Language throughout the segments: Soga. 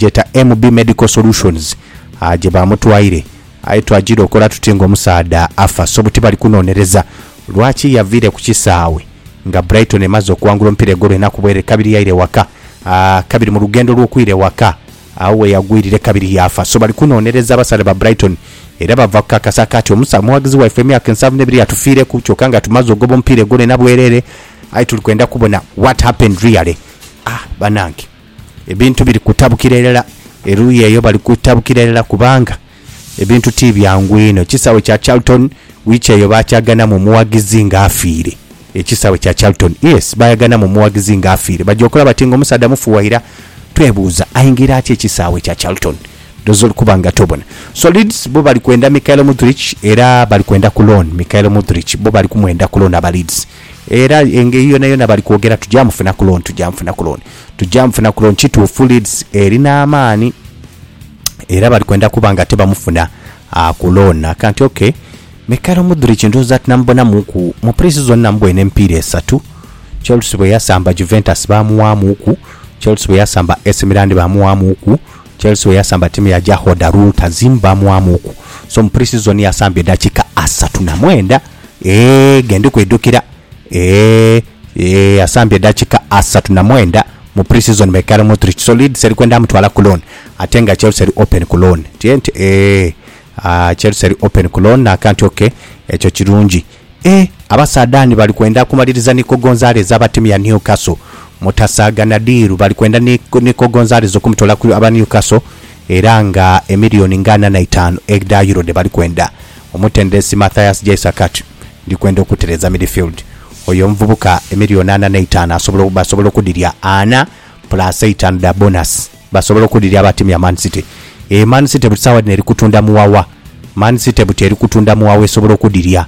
gyeta MB Medical Solutions gye baamutwaire aye twagira okola tuti ng'omusaadha afa so buti bali kunonereza lwaki yaviire ku kisaawe nga Brighton emaze okuwangula omupiira egolo enaku bwere kabiri yaira ewaka kabiri mu lugendo lw'okwira ewaka agho we yagwirire kabiri yaafa so bali kunonereza abasaadha ba Brighton era bava kukakasa kaati omusa omughagizi waife emyaka ensanvu n'ebiri yatufiireku kyoka nga tumaze ogoba omupiira egolo ena bwerere aye tuli kwenda kubona what happened really ah banange. Ebintu biri kutabukira irala, eruuyi eyo bali kutabukira irala kubanga ebintu ti byangu inho. Ekisaawe kya Charlton wiiki eyo baakyaganamu omughagizi ng'afiire. Ekisaawe kya Charlton, yes, baayaganamu omughagizi ng'afiire. Baja okola bati ng'omusaadha mufu waira? Twebuuza, aingira atya ekisaawe kya Charlton? Ndhooza oli kuba nga tobona. So Leeds bo bali kwenda Mykhailo Mudryk era bali kwenda ku loan. Mykhailo Mudryk bo bali kumwenda ku loan aba Leeds. Era engeri yonayona bali kwogera tugya mufuna ku loan tugya mufuna ku loan tugya mufuna ku loan kituufu Leeds erina amaani era bali kwenda kuba nga ate bamufuna ku loan nakanti ok Michael Mudrich ndhooza tinamubonamuuku mu pre-season namubwoine emipiira esatu Chelsea bwe yasamba Juventus baamuwaamuuku Chelsea bwe yasamba AC Milan baamuwaamuuku Chelsea bwe yasamba ttiimu ya Jahoda Rultazim baamuwaamuuku so mu pre-season yasamba eddakiika asatu na mwenda Eeh ge ndi kwidhukira eeh eeh asambye edakika asatu na mwenda mu pre-season Michael Modric so Leeds eri kwenda mutwala ku loan ate nga Chelsea eri open ku loan tye nti eeh aah Chelsea eri open ku loan naka nti ok ekyo kirungi eeh abasaadha ni bali kwenda kumaliriza Nico Gonzalez aba timu ya Newcastle mutasaagana diiru bali kwenda ni Nico Gonzalez okumutoola ku aba Newcastle era nga emillion nga ana na itaanu edha Euro dhe bali kwenda Omutendesi Matthias Jaissakhat ndi kwenda okutereeza midfield. Oyo omuvubuka emilioni ana n'eitaanu asobola, basobola okudhirya ana plus eitaanu dha bonus. Basobola okudhirya aba tiimu ya Man City. Eyo Man City buti saagha dhino eri kutunda muwawa. Man City buti eri kutunda muwawa esobola okudhirya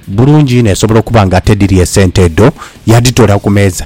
bulungi inho esobola okuba nga tedhirya esente edho, yadhitoolaku meeza.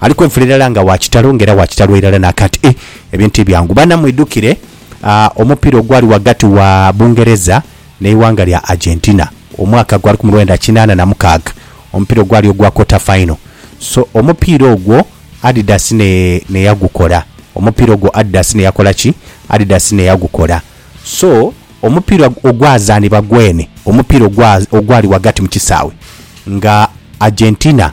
Ali kwenfula irala nga wa kitalo nga era wa kitalo irala nakati. Ih ebintu tibyangu bana mwidhukire omupira ogwali ghagati wa Bungereza neighanga lya Argentina omwaka gwa lukumi lwenda kinana na mukaaga omupira ogwali ogwa quarter final so omupira ogwo Adidas ne neyagukola omupira ogwo Adidas neyakola ki Adidas neyagukola so omupira ogwazanibwa gwene omupira ogwa ogwali ghagati mukisawe nga Argentina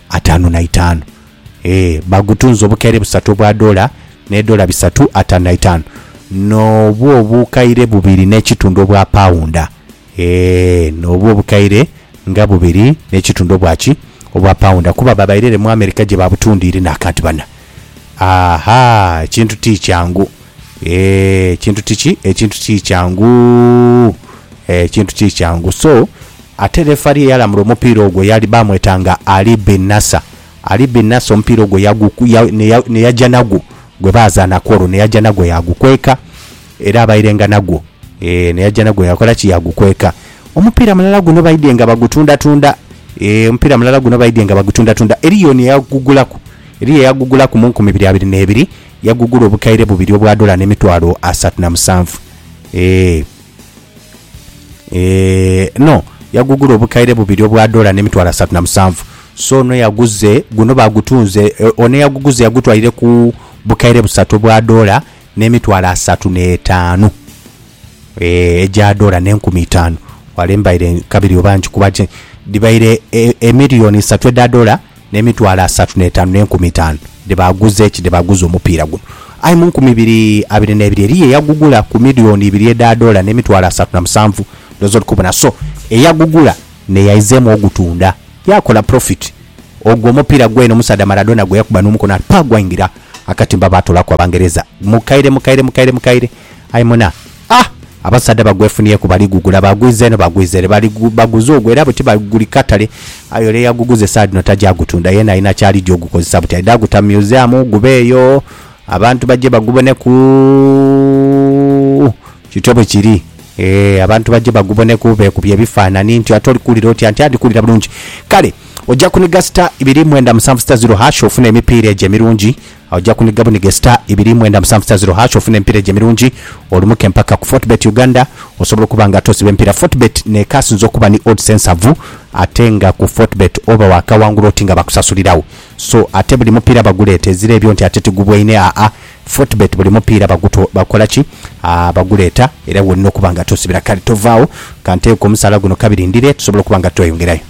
ataanu na itaanu. Ee, baagutunza obukaire busatu obwa dola, n'edola bisatu ataanu na itaanu, n'obwo obukaire bubiri n'ekitundu obwa paunda. Ee, n'obwo obukaire nga bubiri n'ekitundu obwa ki? Obwa paunda, kuba babaire ere mu Amerika gye baabutunda ire naakaati bana. Aha, ekintu ti kyangu. Ee, ekintu ti ki? Ekintu ti kyangu. Ee, ekintu ti kyangu. So, Ate lefali eyalamula omupiira ogwo yaali bamwetanga Ali bin Nasser. Ali bin Nasser omupiira ogwo yagu, ya, ne, ne yaja nagwo gwe baazaanaku olwo, ne yaja nagwo yaagukweka, era abairenga nagwo. Eeh, ne yaja nagwo yakola ki? Yaagukweka. Omupiira mulala guno baidhie nga bagutundatunda. Eeh, omupiira mulala guno baidhie nga bagutundatunda. Eriyo ni eyagugulaku, eriyo eyagugulaku mu nkumi biri abiri n'ebiri, yagugula obukaire bubiri obwa dola n'emitwalo asatu na musanvu. Eeh. Eeh no yagugula obukaire bubiri obwa dola ne mitwalo asatu na musanvu so ono eyaguze guno bagutunze e, ono eyaguguze yagutwaire ku bukaire busatu obwa dola ne mitwalo asatu ne etaanu eeh egya dola ne nkumi itaanu wale mbaire nkabiri oba nkikuba ki dhibaire e, emiliyoni isatu edha dola n'emitwalo asatu n'etaanu n'enkumi itaanu dhe baaguza eki dhe baaguza omupiira guno. Aye mu nkumi ibiri abiri n'ebiri eriyo eyagugula ku miliyooni ibiri edha doola n'emitwalo asatu na musanvu. Ndhooza ori kubona. So, eyagugula n'eyaizeemu ogutunda yaakola purofiti. Ogwo omupiira gwene omusaadha Maradona gwe yakuba n'omukono ati pa gwaingira akatimba baatoolaku Abangereza. Mukaire, mukaire, mukaire, mukaire. Aye muna. A, Abasaadha bagwefunyeku baligugula, baagwiza eno baagwiza ere, bali baguza ogwo era buti bali guli katale, aye ole eyaguguza esaadhino taja gutunda yena alina kyalija ogukozesa buti aidha guta museum gube eyo abantu baje baguboneku kityo bwekiri eeh abantu baje baguboneku bekubye ebifanani nti ate oli kuwulira otya nti a ndikuwulira bulungi kale oja kuniga star ibiri mwenda musanvu star zero hash ofune emipiira egyo emirungi. Oja kuniga bunige star ibiri mwenda musanvu star zero hash ofune emipira egyo emirungi olumuke mpaka ku Fortebet Uganda osobola okuba nga ate osiba emipira Fortebet nekasinze okuba ni odds ensavu ate nga ku Fortebet oba wakawangula oti nga bakusasulirawo so ate buli mupira baguleeta ezira ebyo nti ate tigubwaine aa Fortebet buli mupira baguto bakola ki aa baguleeta era wolina okuba nga ate osibira kale tovaawo kanteeku omusaala guno kabirindire tusobola okuba nga tweyongerayo.